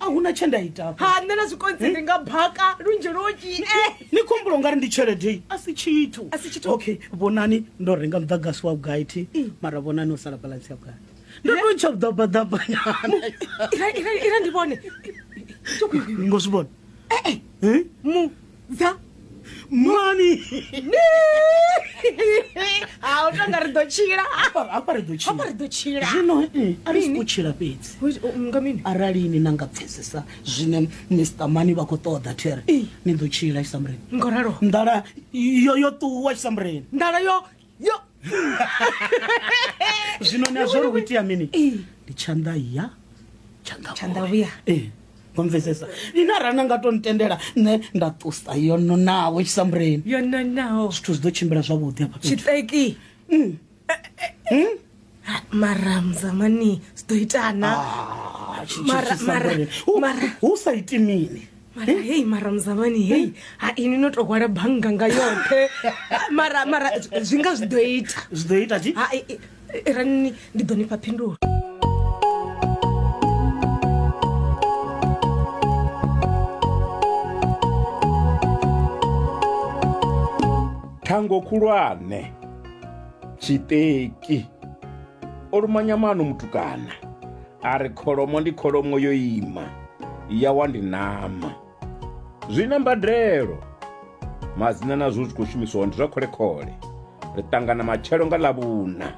a hu na tshe nda ita ha nṋe na zwikonzi ndi nga baka lunzhi lunzhi ni khombulo nga ri ndi tshelede a si tshithu A si tshithu. okay vhonani ndo renga muḓagasi wa vhugai thi mara vhonani o sala balansi ya vhugai ndo to ntsha vhuḓabaḓabanyana ira ndi vhone ngo zwi vhona Eh? mu dza mani ha u tonga ri ḓo tshila hafha hafha ri ḓo hafha ri tshila ḓo tshila zwino mm, a ri siko tshila fhedzi Hu- u- nga mini arali ni na nga pfesesa zwine mr mani vha khou ṱoḓa there Ee. ni ḓo tshila tshisamureni ngo ralo nḓala yo yo ṱuwa tshisamureni nḓala yo yo zwino na zwo ri u itea mini ndi tshanḓa ya tshanḓa vhuya ee wa mvesesa ine arali na nga to ntendela nṋe nda ṱusa yo nonaho tshisambuleni yo nonaho zwithu zwi ḓo tshimbila zwavhuḓi hafha tshiṱeki Ah, mara muzamani zwi ḓo itana Ah, tshi- tshi- Mara- tshi- mara- Samboni. Hu- mara- hu sa iti mini mara hei mara muzamani hei ha ini no to hwala bannga nga yoṱhe mara mara zwi- zwi nga zwi ḓo ita zwi ḓo ita tshi ha i- i- i- rani ndi ḓo nifha phindulo thango khulwane Tshiṱeki. O luma nyamana u mutukana, a ri kholomo ndi kholomo yo ima, ya wa ndi ṋama. Zwi na mbadelo. Madzina na zwo zwi khou shumiswa ndi zwa khole-khole. Ri ṱangana matshelo nga Ḽavhuṋa.